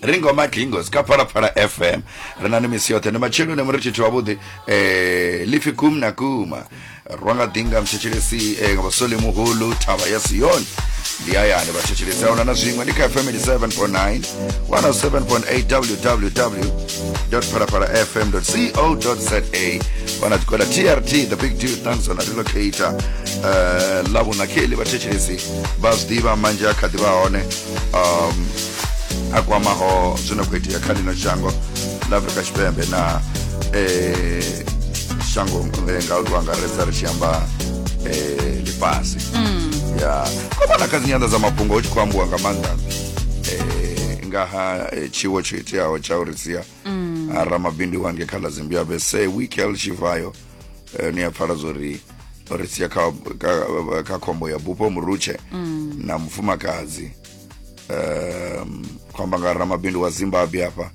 ringo madlingo sikapharafara fm ri na ni misi yoṱhe ndi matshelo ne muri tshithu wavhuḓi um lifi kum na kuma rwa nga ḓinga mthetshelesi um vhasole muhulu thavha ya siyoni ndi hayani vhathetshelesi a huna na zwiṅwe ndi kha fm 87.9 107.8 www www.parapara.fm.co.za vana tikoda trt the big deal tanzon relocator uh, eh, lavunakeli vathetshelesi va zwi ḓivha manzhi a kha ḓi vha hone um, a kwamaho zwi no khou itea kha lino shango la afrika tshipembe na eh, shango eh, nga u angaredza ri tshi amba eh, lifhasi mm. ya ko vhona kha dzi nyanḓa dza mafhungo hu tshi khou ambiwa nga maanḓa eh, nga ha eh, tshiwo tsho iteaho tsha uri sia mm. ha ramabindu wange kha ḽa zimbabwe se wikel tshivayo eh, ni a pfala zwo ri ri sia kha, kha, kha khombo ya bupo murutshe mm. na mufumakadzi um, khou amba nga ramabindu wa zimbabwe afha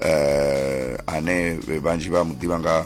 um ane vhanzhi vha mu ḓivha nga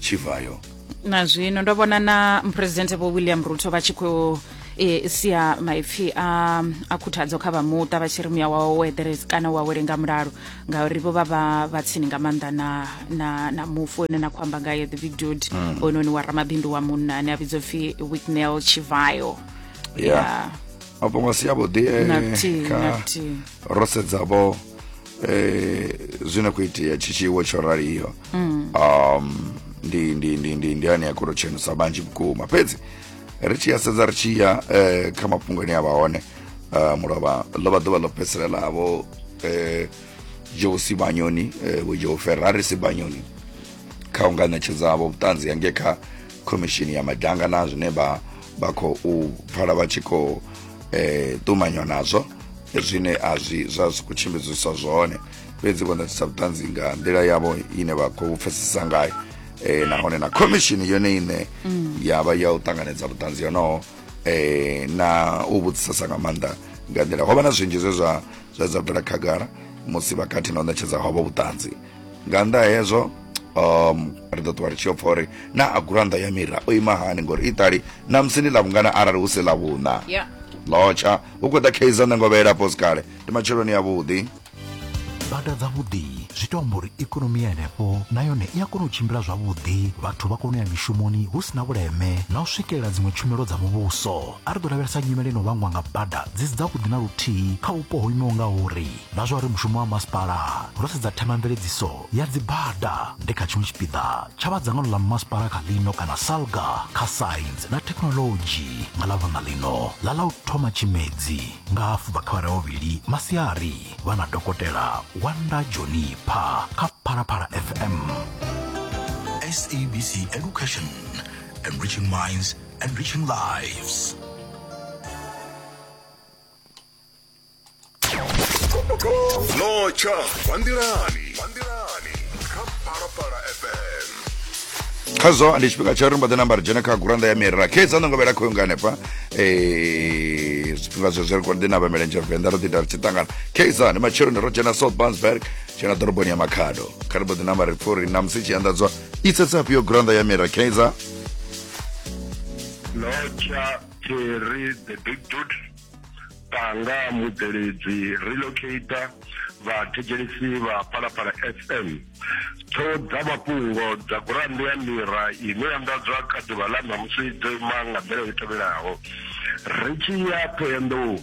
tshivhayo na zwino ndo vhona na muphuresidennde vho william ruto vha tshi khou e, sia maipfi a, a khuthadzo kha vha muṱa vha tshi ri muya wawo wo eḓerezi kana u awele nga mulalo ngauri vho vha vha vha tsini nga maanḓa na, na, na mufu one na khou amba ngayo the vidud mm. ononi wa ramabindu wa munna ane a vhidzwa pfi wicknel chivayo yeah. yeah. mafhungo a si avhuḓi eh, kha ro sedzavho eh, zwi na khou itea tshi tshiwo tsho raliho mm. um ndi ndi ndi ndi ndi ane ya khou tshenusa vhanzhi vhukuma fhedzi ri tshi ya sedza ri tshi ya eh, kha mafhungo ane a vha hone uh, mulovha ḽo vha ḓuvha ḽo fheselelavo eh, joe sibanyoni eh, vho joe ferrari sibanyoni kha u nga ṋetshedzavho vhuṱanzi hange kha khomishini ya madanga na zwine vha vha khou pfala vha tshi khou eh, ṱumanywa nazwo zwine a zwi zwa zwi khou tshimbidziswa zwone fhedzi vho ṋetshisa vhuṱanzi nga nḓila yavho ine vha khou pfesesa ngayo eh, nahone na khomishini yone ine mm. ya vha ya u ṱanganedza vhuṱanzi yonoho eh, na u vhudzisesa nga maanḓa nga nḓila ho vha na zwinzhi zwe zwa zwa dza bvela khagala musi vhakati na u ṋetshedza havho vhuṱanzi nga nnḓa hezwo um ri ḓo ṱuwa ri tshi yo pfa uri na a gurannḓa ya mira o ima hani ngori iṱali na musi ndi ḽa vhungana arali hu si ḽa vhuṋa lotsha hu khou ḓa kaizer nṋe ngo vheela pos kale ndi matsheloni ya vhuḓi bada dzavhuḓi zwi to amba uri ikonomi ya henefho na yone i a kona u tshimbila zwavhuḓi vhathu vha kona u ya mishumoni hu si na vhuleme na u swikelela dziṅwe tshumelo dza muvhuso a ri ḓo lavhelesa nyimele no vhangwa nga bada dzi si dzavhuḓi na luthihi kha vhupo ho imaho nga uri Nga zwa uri mushumo wa masipala, ro sedza themamveledziso ya dzibada nde kha tshiṅwe tshipiḓa tsha vha dzangano ḽa masipala kha ḽino kana SALGA kha Saintsi na Thekhinolodzhi nga ḽa vhunḓa ḽino ḽa ḽa u thoma Tshimedzi nga hafu bva kha awara ya vhuvhili masiari vha na Dokotela Wanda Jonipha kha Phalaphala FM. SABC Education, enriching minds, enriching lives. notsha kwanḓilani kha phalaphala fm khazwo ndi tshifhinga tsha uri mbaḓe namba ri dzhene kha gurannda ya miri rakhedza ndo ngovhela khoyo nga hanefha Eh, zwifhinga zwe zwi ri kone ḓi navha milenzhe venḓa ro ḓi ita ri tshi ṱangana keiza ndi matsheloni ro dzhena south bansberg dzhena ḓoroboni ya makhado kha ri mbo ḓi namba ri pfha uri namusi tshi anḓadzwa i tsetsafhi yo gurannda ya miri keiza notsha terry the big dude panga mubveledzi relocator vha thetshelesi vha palapala fm tho dza mafhungo dza gurannde ya mira ine ya ndadzwa kha ḓuvha ḽa ṋamusi dzo ima nga nḓila i tevhelaho ri tshi ya ṱhoyandou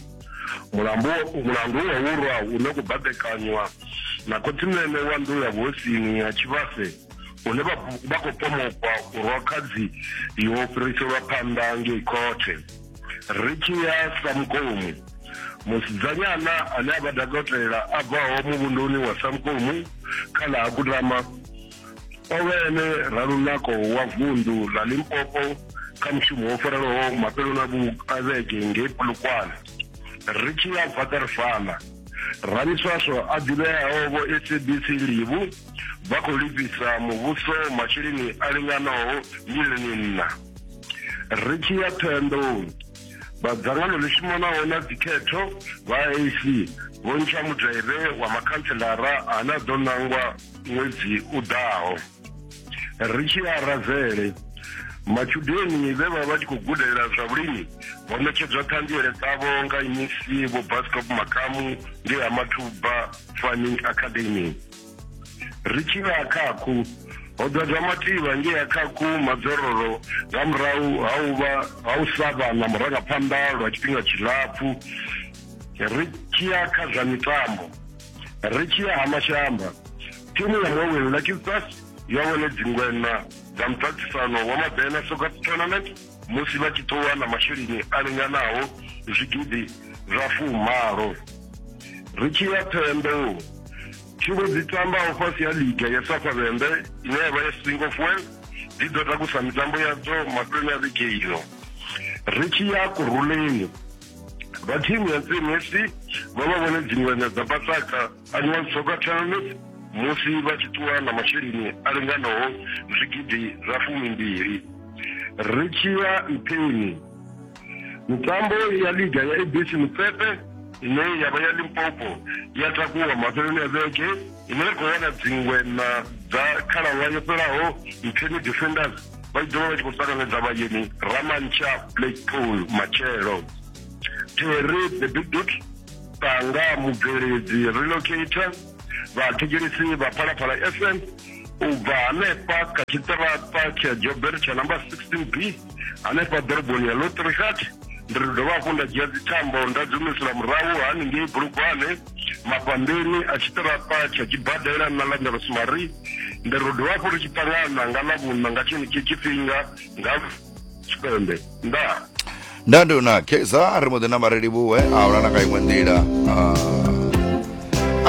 mulandu mulandu wa wurwa une ku baḓekanywa na khothinene wa nḓu ya vhosini ya tshivhase hune vha khou pomokwa u rwa khadzi yo fhiriselwa phanḓa ngei khothe ri tshi ya samkomu musidzanyana ane a vha dakotela a bvaho muvhunduni wa samkomu kha ḽa ha kutama o vha ene ralunako wa vunḓu ḽa limpopo kha mushumo wo farelaho mafheloni a vhege ngei pulukwane ri tshi ya vaterfala ramiswaswo a ḓivheaho vho sabc livu vha khou lifhisa muvhuso masheleni a linganaho milioni nṋa ri tshi ya thoyandoni vha dzangano ḽi shumanaho na dzikhetho vha ac vho ntsha mudaire wa makhantselara ane a ḓo nangwa ṅwedzi u ḓaho ri tshi ya razele matshudeni vhe vha vha tshi khou gudela zwa vhulimi vho ṋetshedzwa ṱhanziele dzavho nga imisi vho bascop makamu ngei ha mathuba farming academy ri tshi vha khakhu ho ḓadza mativha ngei a khakhu madzororo nga murahu ha u vha ha u sa vha na murangaphanḓa lwa tshifhinga tshilapfu ri tshi ya kha zwa mitambo ri tshi ya ha mashamba thimu ya mawin lucky stars yo wane dzingwena dza muṱaṱisano wa mabena soccer tournament musi vha tshi ṱuwa na masheleni a linganaho zwigidi zwa fumalo. Ri tshi ya Thembou, thimu dzi tambaho fhasi ha liga ya Safavhembe ine ya vha ya Singo Fuel dzi ḓo takusa mitambo yadzo mafheloni a vhege ino. Ri tshi ya Kurhuleni, vha thimu ya Ntsini FC vho vha vhone dzingwenya dza Pasaka A zwi nga dzhoga thanga musi vha tshi ṱuwa na masheleni a linganaho zwigidi zwa fumimbili. Ri tshi ya nṱheni, mitambo ya liga ya ABC Motsepe ine ya vha ya Limpopo ya takuwa mafheloni a vhege ine ya khou wana dziṅwe na dza khalaṅwaha yo fhelaho Ntheni Defenders vha tshi ḓovha vha tshi khou ṱanganedza vhayeni Ramantsha Blackpool matshelo. Terry the Big Duke Tanga Mubveledzi Relocator, vhathetshelesi vha Phalaphala FM u bva hanefha kha tshiṱaraṱa tsha Joburg tsha namba 16B hanefha ḓoroboni ya Lotrigat ndi ri dovha hafhu nda dzhia dzithambo nda dzi humisela murahu haningei bulugwane mafhambeni a tshiṱaraṱa tsha tshibadela na ḽa ndarosmari ndi ri dovha hafhu ri tshi ṱangana nga ḽa vhuṋa nga tshenetshi tshifhinga nga tshipembe ndaa nda ndi una kza ri mbo ḓi namba ri livhuwe a huna na nga iṅwe nḓila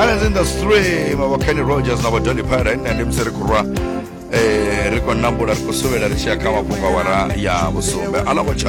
islands in the stream avo kenny rogers na vadoni pira ine ndi musi ri khou rwa eh, ri khou nambula ri khou suvhela ri tshi ya kha mafhungo awara ya vhusumbe alongo tsha